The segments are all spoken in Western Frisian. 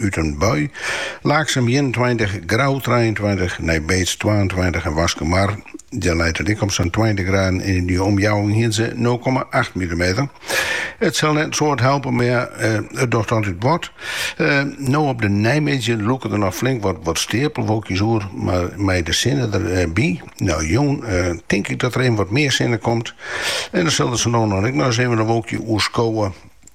út in bui, Laaksum ienentweintich, Grou trijeentweintich, Nijbeets twaentweintich en Waskumar, dêr leit it ek op sa'n tweintich graden en yn dy omjouwing hienen se nul komma acht millimeter. It sil net in soad helpe, mar it docht dan altyd wat. No op de neimiddei lûke der noch flink wat steapelwolkjes oer, mar mei de sinne der by, no jûn, tink ik dat der even wat mear sinne komt en dan sille der sa no en dan ek noch ris even in wolkje oerskowe.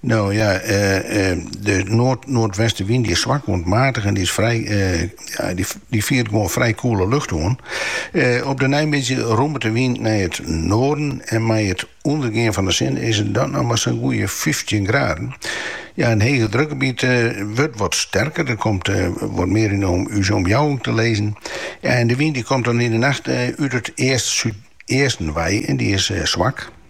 No ja, de noard-noardwestewyn dy is swak oant maatich en dy fiert gewoan frij koele lucht oan. Op de neimiddei rommet de wyn nei it noarden en mei it ûndergean fan de sin is it dan noch mar sa'n goeie fyftjin graden. Ja, in hege drukgebiet wurdt wat sterker, der komt wat mear yn ús omjouwing te lizzen. Ja, en de wyn dy komt dan yn 'e nacht út it east-súdeasten wei en dy is swak.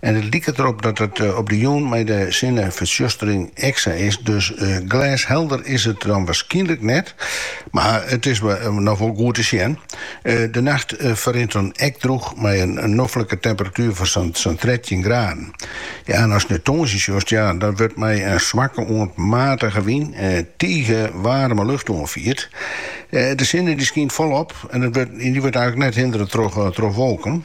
En it liket derop dat it op de jûn mei de sinnefertsjustering ek sa is. Dus glêshelder is it dan waarskynlik net, mar it is noch wol goed te sjen. De nacht ferrint dan ek drûch mei in noflike temperatuer fan sa'n trettjin graden. Ja, en ast nei tongersdei sjochst, ja, dan wurdt mei in swakke oant matige wyn tige waarme lucht oanfierd. De sinne dy skynt folop en dy wurdt eislik net hindere troch wolken.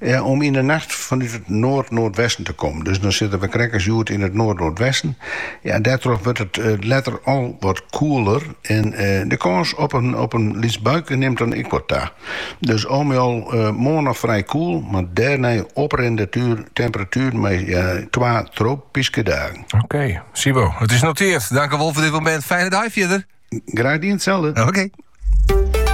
Ja, om yn 'e nacht fanút it noard-noardwesten te kommen. Dus dan sitte we krekt as hjoed yn it noard-noardwesten. Ja, dêrtroch wurdt it letter al wat koeler en de kâns op in lyts buikje nimt dan ek wat ta. Dus al mei al moarn noch frij koel, mar dêrnei oprennende temperatueren mei twa tropyske dagen. Oké, Sibo, it is noteerd. Dank wol foar dit moment. Fijne dei fierder. Graag dien, itselde. Oké.